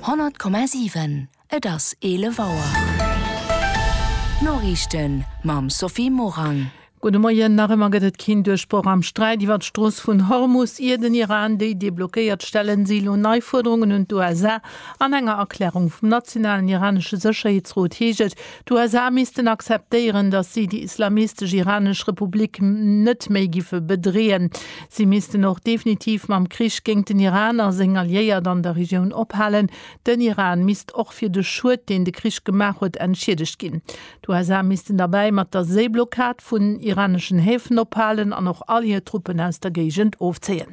100,7 Et ass 11 Auer. D'Noriichten mam Sophie Morang. Gudde Moien, Nach ëmmer gëtt et keen Duerchbroch am Sträit iwwer d'Strooss vun Hormus, ier den Iran déi deblockéiert. Stellen si elo nei Fuerderungen un d'USA. An enger Erklärung vum nationalen iranesche Sécherheetsrot heescht et, D'USA missten akzeptéieren, datt si déi islamistesch iranesch Republik net méi giffe bedreeën. Si missten och definitiv mam Krich géint den Iran a seng Alliéiert an der Regioun ophalen. Den Iran misst och fir de Schued, deen de Krich gemaach huet, entschiedegt ginn. D'USA missten derbäi mat der Séiblockad vun iraneschen Häfen ophalen an och all hir Truppen aus der Géigend ofzéie.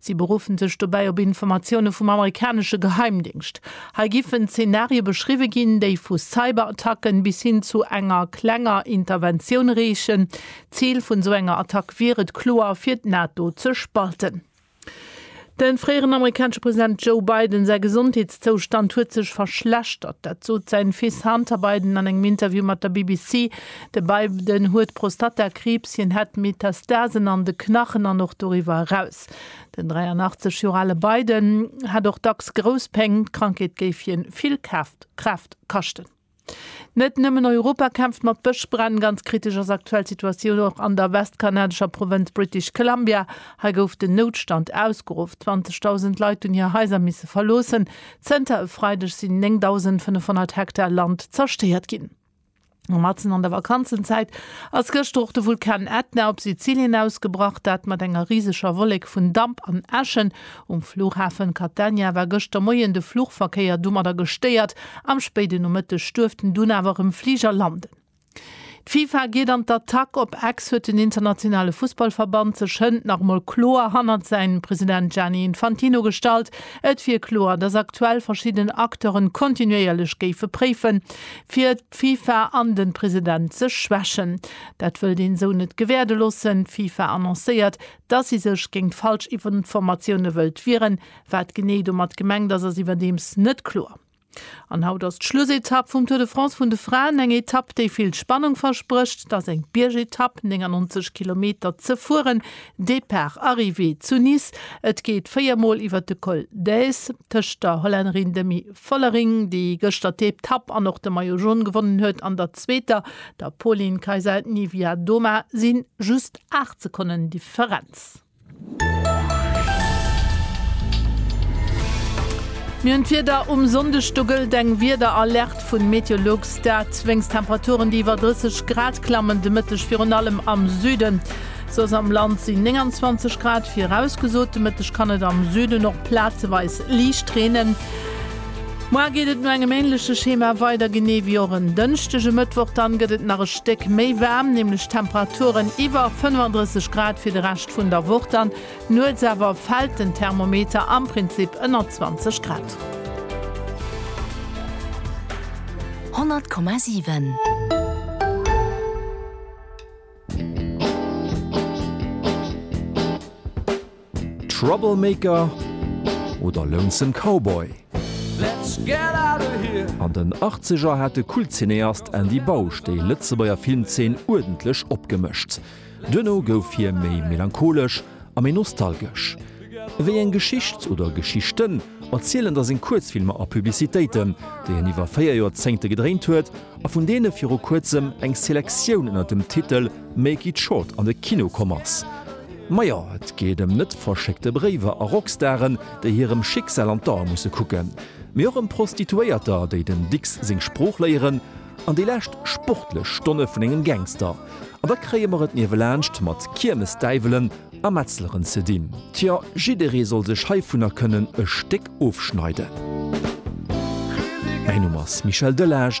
Si beruffen sech dobäi op Informatioune vum amerikanesche Geheimdéngscht. Hei giffen Zenarie beschriwwe ginn, déi vu Cyberattacken bis hin zu enger klenger Interventioun reechen. D'Zil vun esou enger Attack wier et kloer, fir d'NATO ze spalten. Dem fréieren amerikanesche President Joe Biden säi Gesondheetszoustand huet sech verschlechtert. Dat sot säin Fils Hunter Biden an engem Interview mat der BBC. De Biden huet Prostatakriibs, hien hätt Metastasen an de Knachen an och doriwwer eraus. Den 83 Joer ale Biden hätt och dacks grouss Péng. D'Krankheet géif hie vill Kraaft kaschten. Net nëmmen Europa kämpft mat Bëschbränn. Ganz kritesch ass aktuell d'Situatioun och an der westkanadescher Provënz British Columbia. Hei gouf den Noutstand ausgeruff. 20.000 Leit hunn hir Haiser misse verloossen. Zënter e Freideg sinn 9.500 Hektar Land zerstéiert ginn. Matzen an der Vakanzenzäit ass gëschter och de Vulkan Ätna op Sizilien ausgebrach. Dat mat enger riseger Wollek vun Damp an Äschen. Um Flughafen Catania war gëschter Moien de Flugverkéier domadder gestéiert. Am spéiden Nomëtteg duerft en dunn awer erëm Fliger landen. D'FIFA geet an d'Attack, Op Ex huet den internationale Fussballverband sech hënt nach emol kloer hannert säin President Gianni Infantino gestallt. Et wier kloer, datt aktuell verschidden Acteuren kontinuéierlech géife préifen, fir d'FIFA an de President ze schwächen. Dat wëllt een esou net gewäerde loossen. D'FIFA annoncéiert, datt si sech géint falsch Informatioune wëllt wieren. Wat genee domat gemengt ass, ass iwwerdeems net kloer. An haut ass d'Schlussetapp vum Tour de France vun de Fraen. Eng Etapp, déi vill Spannung versprécht. Et ass eng Biergetapp, 99 Kilometer ze fueren, Depart, Arrivée zu Nice. Et geet 4 Mol iwwer de Col d'Èze. Tëscht der Hollännerin Demi. Vollering, déi gëschter d'Eetapp an och de Maillot Jaune gewonnen huet, an der zweeter, der Pauline Kaisa-Niewiadoma, si just 8 Sekonnen Differenz. Mir hunn d'Wieder um Sonndeg, do gëllt eng Wiederalerte vun Meteolux, dat wéinst Temperaturen, déi iwwer 30 Grad klammen de Mëtteg, virun allem am Süden. Soss am Land sinn 29 Grad virausgesot. De Mëtteg kann et am Süden och plazeweis liicht reenen. Moar geet et no engem änleche Schema weider, genee wéi och en Dënschdeg e Mëttwoch. Dann gëtt et nach e Stéck méi waarm, nämlech Temperaturen iwwer 35 Grad fir de Rescht vun der Woch. Dann nuets awer fält den Thermometer am Prinzip ënner 20 Grad. 100,7. Troublemaker oder Lonesome Cowboy? An den Achtzeger hat de Kultcineast Andy Bausch déi Lëtzebuerger Filmzeen uerdentlech opgemëscht. Duerno gouf hie méi melancholesch a méi nostalgesch. Wéi eng Geschicht oder Geschichten erzielen da seng Kuerzfilmer a Publicitéiten, déi en iwwer véier Joerzéngte gedréint huet a vun deene viru kuerzem eng Selektioun ënner dem Titel Make it short an de Kino komm ass. Majo, et geet ëm net verschéckte Bréiwer a Rockstaren, déi hirem Schicksal an d'Ae musse kucken, mee och ëm Prostituéierter, déi dem Dicks seng Sprooch léieren, an déi lescht sportlech Stonne vun engem Gangster. An da kréie mer et niewelaanscht mat Kiermesdäiwelen a Metzleren ze dinn. Tjo, jidderee soll sech heivunner kënnen e Stéck ofschneiden. Mäin Numm ass Michel Delage,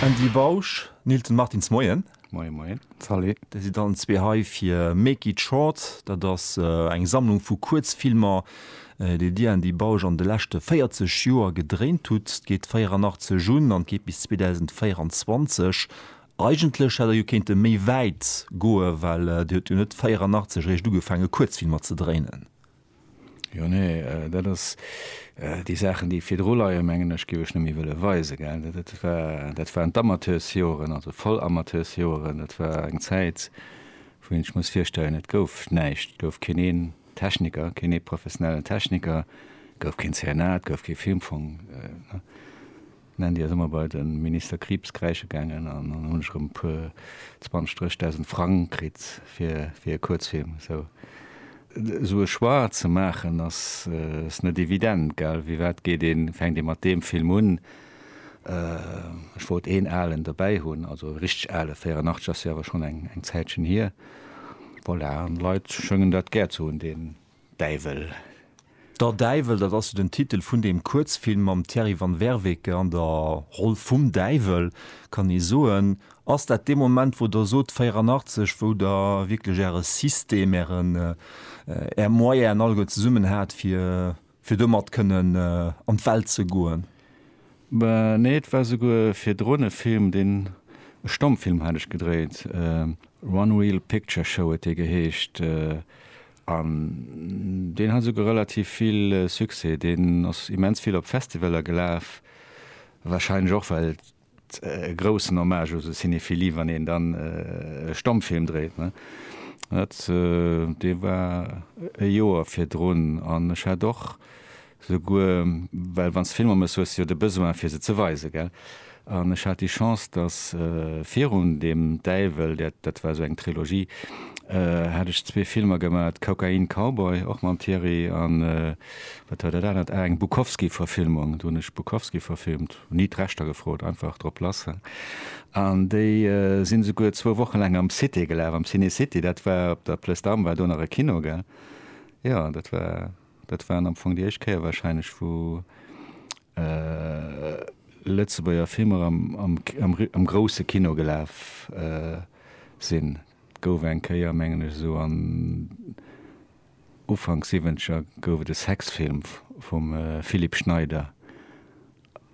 Andy Bausch, Nilton Martins, Moien. Moien, moien. Salut. Der sidd allen zwee hei fir Make it short. Dat ass eng Sammlung vu Kuerzfilmer, déi Dir, Andy Bausch, an de leschte 40 Joer gedréint hutt. Geet 84 un an geet bis 2024. Eigentlech hätt Der jo kéinte méi wäit goe well Dir hutt jo net 84 eréischt ugefaange Kuerzfilmer ze dréinen. Jo, nee, dat ass, déi Saachen, déi virdru leien, mengen ech, géif ech net méi wëlle weisen, gell. Dat war, dat waren d'Amateursjoren, also voll Amateursjoren. Dat war eng Zäit, wou een sech muss virstellen, et gouf näischt. Et gouf keen een Techniker, keen ee professionellen Techniker, et gouf keen CNA, et gouf kee Filmfong, D'Nandy ass ëmmer bei den Minister Krieps kräische gaangen an dann hunn ech erëm e puer, zwanzeg, dréchdausend Frang kritt fir e Kuerzfilm. Esou e Choix ze maachen ass net evident, gell? Firwat geet een, fänkt ee mat deem Film un? Ech wollt een alen dobäi hunn, also e richteg ale, 84 ass jo awer schonn eng Zäitchen hier. Voilà, an d'Leit schëngen dat gär ze hunn. Däiwel. Der Däiwel, dat ass jo den Titel vun deem Kuerzfilm mam Thierry Van Werveke an der Roll vum Däiwel, kann ee soen. Ass dat dee Moment, wou Der sot, 84, wou Der wierklech Äre System, Ären, Är Moyenen alleguer zesummen hat, fir, fir domat kënnen an d'Welt ze goen? Nee, et war souguer virdrun e Film, deen, e Stommfilm hat ech gedréit, One Reel Picture Show huet dee geheescht, An deen hat esouguer relativ vill Succès. Deen ass immens vill op Festivaler gelaf, wahrscheinlech och well et e groussen Hommage u sou Cinephilie, wann een dann e Stommfilm dréit, ne? Dat, dee war e Joer virdrun an ech hat och Souguer, well wann s de Filmer méchs, hues de jo de Besoin, fir se ze weisen, gell? An ech hat déi Chance, dass virun dem Däiwel, dat, dat war esou eng Trilogie, hat ech zwee Filmer gemaach, Cocaïne Cowboy, och mam Thierry, a wat war dat anert, ah, eng Bukowski-Verfilmung, do hunn ech Bukowski verfilmt, hunn ni d'Rechter gefrot, einfach drop lass. An déi sinn esouguer zwou Woche laang am Cité gelaf, am Ciné City, dat war op der Plëss Damm, war do nach e Kino, gell? Jo, dat war. Dat war am Fong déi éischt Kéier warscheinlech, wou Lëtzebuerger Filmer am grousse Kino gelaf sinn. Et gouf eng Kéier, mengen ech, esou an Ufank Siwwenzeger gouf et e Sexfilm vum Philipp Schneider.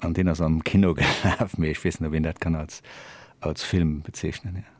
An deen ass am Kino gelaf, mee ech weess net, ob een dat kann als, als Film bezeechnen, jo.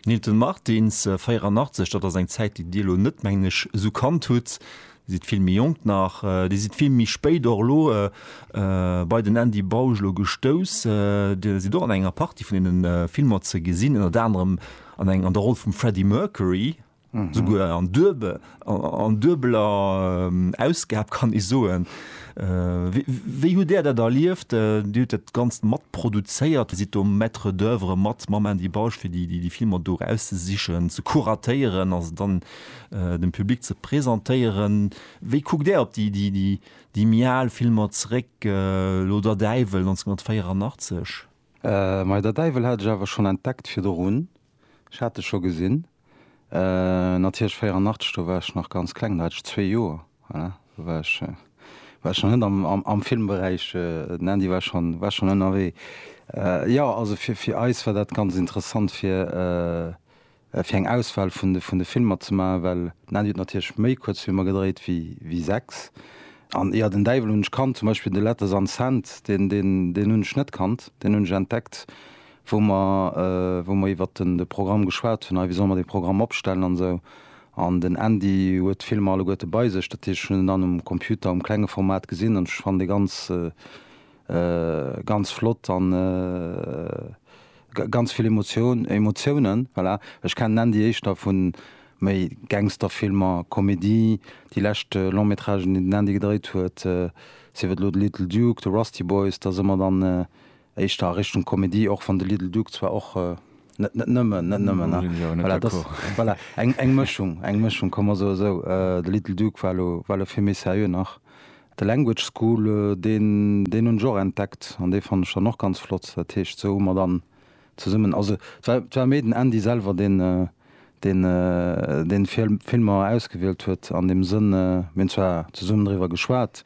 Nilton Martins, 84, dat ass eng Zäit, déi Dir elo net, mengen ech, esou kannt hutt. Dir sidd vill méi jonk nach. Dir sidd vill méi spéit och elo bei den Andy Bausch elo gestouss. Dir sidd och an enger Partie vun deene Filmer ze gesinn, ënnert anerem an eng, an der Roll vum Freddie Mercury. Souguer an duebeler Ausgab, kann ee soen. Wéi hutt Där dat erlieft? Dir hutt dat Ganzt mat produzéiert, sidd do Maître d'oeuvre mat mam Andy Bausch, fir déi Filmer do erauszesichen, ze kuratéieren a se dann dem Public ze presentéieren. Wéi kuckt Där op déi méi al Filmer zeréck, elo Der Däiwel, 1984? Majo, Der Däiwel hat ech awer schonn entdeckt virdrun. Ech hat e scho gesinn. Natierlech 84, do war ech nach ganz kleng, do hat ech zwee Joer, voilà, do war ech, war ech nach net am, am, am Filmberäich, den Andy war schonn, war schonn ënnerwee. Jo, also fir, fir eis war dat ganz interessant fir, fir eng Auswahl vun de, vun de Filmer ze maachen, well den Andy huet natierlech méi Kuerzfilmer gedréit wéi, wéi sechs. An jo, den Däiwel hunn ech kannt, zum Beispill de Letters an Sand, deen, deen, deen hunn ech net kannt, deen hunn ech entdeckt wou mer, wou mer iwwert den, de Programm geschwat hunn, hei, wéi solle mer dee Programm opstellen an esou. An den Andy huet d'Filmer alleguerte bei sech, dat heescht, ech hunn en dann um Computer um klenge Format gesinn an ech fannen dee ganz, ganz flott an ganz vill Emotioun, Emotiounen, voilà. Ech kennen den Andy éischter vu méi Gangsterfilmer, Komedie. Déi lescht Long-Métragen, déi den Andy gedréit huet, sief et elo de Little Duke, de Rusty Boys, da si mer dann Éischter a Richtung Komedie, och wann de Little Duke zwar och net, net nëmmen, net nëmmen, Do sinn ech awer net voilà, dass, d'accord. voilà, eng, eng Mëschung, eng Mëschung, komm mer soe esou, de Little Duke war elo, war elo vill méi seriö nach. The Language School, deen, deen hunn ech och entdeckt an dee fannen ech dann och ganz flott. Dat heescht, sou hu mer dann zesummen, also et war, et war méi den Andy selwer, deen, deen, deen d'Filmer ausgewielt huet an deem Sënn, mir hunn zwar zesummen driwwer geschwat,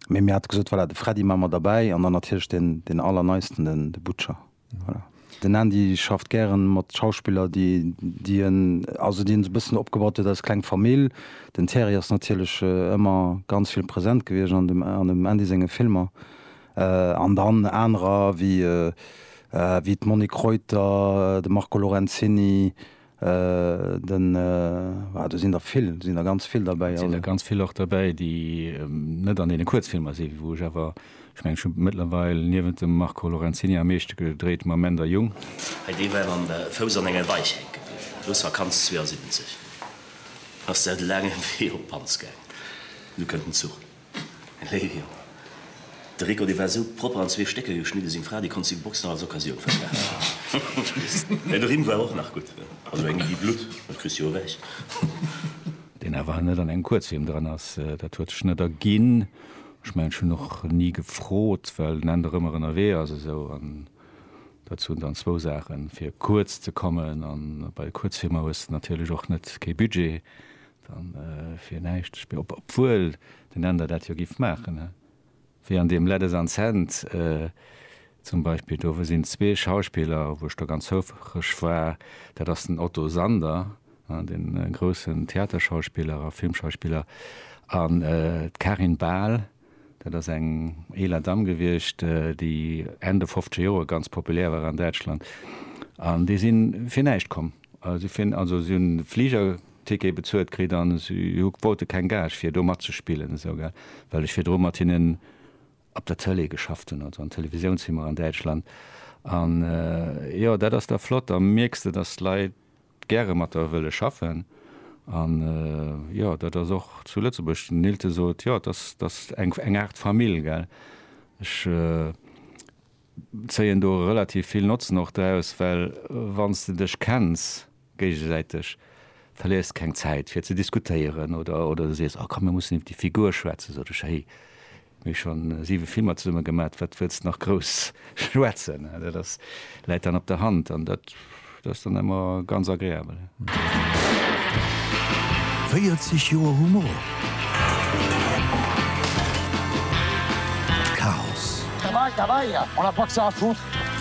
Mee mir hate gesot, voilà, de Freddy maache mer derbäi an dann natierlech deen, deen Allerneisten, den, de Butcher. Voilà. Den Andy schafft gären mat Schauspiller, déi, déi en, also déi en esou e bëssen opgebaut huet als kleng Famill. Den Thierry ass natierlech ëmmer ganz vill present gewiescht an dem, an dem Andy senge Filmer. An dann anerer wéi, wéi d'Monique Reuter, de Marco Lorenzini, Den, ah do sinn der vill, do sinn der ganz vill derbäi. Et sinn der ganz vill och derbäi, déi net an deene Kuerzfilmer sinn, wou ech awer, ech mengen, ech hu mëttlerweil niewent dem Marco Lorenzini am meeschte gedréit mam Änder Jung. Hei, dee war mam Fouss an enger Deich hänke bliwwen, et wouss Vakanz 72, ass der de laangen Wee op Panz gaangen, nu kënnt den Zuch. Léiwjong, De Rico dee war esou propper an zwee Stécker geschnidde, seng Fra déi konnt seng Boxen als Occasioun verkaafen. Mä de Rimm war och nach gutt, also eng Iddi Blutt, dat kriss jo ewech. Deen awer net an engem Kuerzhiem dran ass, dat huet sech net erginn. Ech mengen ech hunn och ni gefrot, well den Änder ëmmer ënnerwee ass esou. An dozou hunn dann zwou Saachen, fir kuerz ze kommen, a bei de Kuerzhiemer hues de natierlech och net kee Budget, Dann fir näischt Spill, obwuel den Änder dat jo giff maachen, he? Wéi an deem Let Us Unsend zum Beispill, do sinn zwee Schauspiller, wou ech do ganz houfreg war, dat ass den Otto Sander, he, den groussen Theaterschauspiller a Filmschauspiller, an d'Karin Bahl, Dat ass eng eeler Damm gewiescht, déi Enn de fofzege Joer ganz populär war an Däitschland. An déi si fir näischt komm. Si fir, also si hunn e Fligerticket bezuelt kritt an si wollte keng Gage fir do matzespillen esou, gell, well ech virdru mat hinnen op der Tëlee geschafft hunn, also an Televisiounshimmer an Däitschland. An jo, dat ass da flott. Da mierks de, dass d'Leit gäre mat der wëlle schaffen. An jo, dat ass och zu Lëtzebuerg, den Neelte sot, jo, dat ass eng Aart Famill, gell. Ech zéien do relativ vill Notzen och draus, well wann s de dech kenns géigesäiteg, verléiers de keng Zäit fir ze diskutéieren oder sees, a komm mir mussen iwwer déi Figur schwätzen, sot ech, héi, Mir hu schonn 7 Filmer zesumme gemat, wat wëlls de nach grouss schwätzen? Dat ass, läit dann op der Hand an dat ass dann ëmmer ganz agreabel. 40 Joer Humor, Chaos.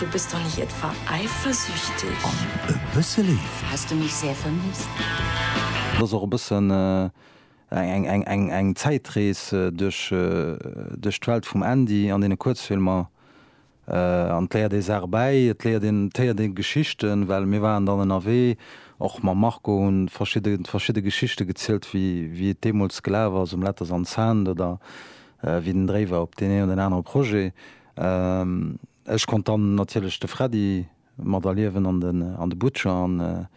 Du bist doch nicht etwa eifersüchtig? An e bësse Léift. Hast du mich sehr vermisst? Et ass och e bëssen Eng Zäitrees duerch d'Welt vum Andy an deene Kuerzfilmer. An et léiert ee Saache bäi, et léiert een, et héiert ee Geschichten, well mir waren dann ënnerwee och mam Marco, hunn verschidde Geschichte gezielt, wéi et deemools gelaf ass um Letters on Sand oder wéi den Dréi war op deen een oder deen anere Projet. Ech konnt dann natierlech de Freddy mat erliewen an de Butcher an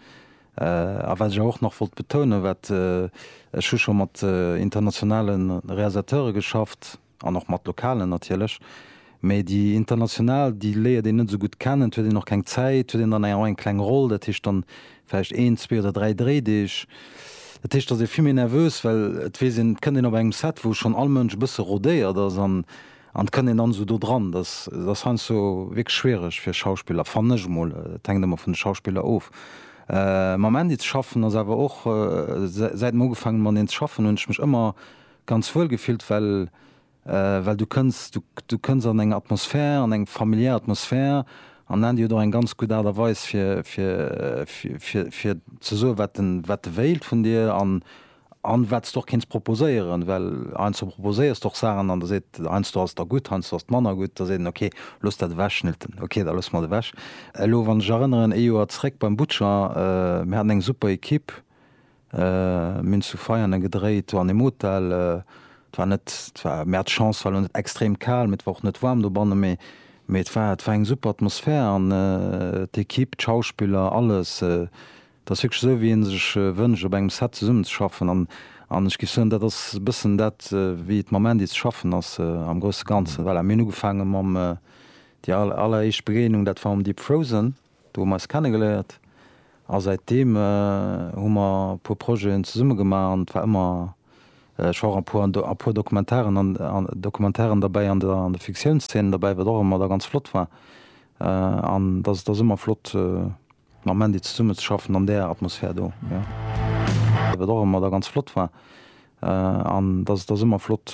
a wat ech awer och nach wollt betounen, wat ech hu scho mat internationale Realisateure geschafft an och mat lokalen natierlech, mee déi international déi léiert een net esou gutt kennen, et huet een och keng Zäit, et huet een dann awer och eng kleng Roll, dat heescht dann vläicht een, zwee oder dräi Dréideeg, dat heescht et ass ee vill méi nervös, well et weess een, et kënnt een op engem Set wou schonn all Mënsch e bësse rodéiert ass an An et kënnt een dann esou do dran. Dass ass heiansdo wierklech schwiereg fir Schauspiller, fannen ech emol. Et hänkt ëmmer vun de Schauspiller of. Mam Andy ze schaffen ass awer och, säit mer ugefaangen mat en ze schaffen, hunn ech mech ëmmer ganz wuel gefillt, well well du kënns du kënns an eng Atmosphär, an eng familiär Atmosphär. An den Andy huet och eng ganz gutt Aart a Weis fir fir fir fir ze soen, wat en wat e wéilt vun dir. An An wat s de och kéints proposéieren, well heiansdo proposéiers de och Saachen an da seet heiansdo ass der gutt, heiansdo ass et manner gutt, da seet en ok, looss dat ewechschnitten, ok, da loosse mer et ewech. Elo wann ech erënneren, ee Joer zréck beim Butcher, mir haten eng super Ekipp, mir hunn zu Veianen gedréit, do an deem Hotel, et war net, et war, mir hate Chance, et war elo net extrem kal, mee et war och net waarm dobannen, mee mee et war, et war eng super Atmosphär an d'Ekipp, d'Schauspiller, alles, Dat ass wierklech esou, wéi ee sech wënscht, op engem Set zesummenzeschaffen. An, an ech géif soen, dat ass e bëssen dat, wéi et mam Andy ze schaffen ass am grousse Ganzen. Voilà, mir hunn ugefaange mam, déi aller, alleréischt Begéinung, dat war mam Deep Frozen, do hu mer eis kennegeléiert. A säitdeem hu mer e puer Projeten zesumme gemaach an et war ëmmer, ech war och e puer, e puer Dokumentaren, an Dokumentaren derbäi an der, an de Fiktiounszeenen derbäi, wat och ëmmer da ganz flott war. An dat ass, dat ass ëmmer flott. Mam Mandy zesummen ze schaffen an där Atmosphär do, jo. Wat och ëmmer da ganz flott war, an dat ass ëmmer flott.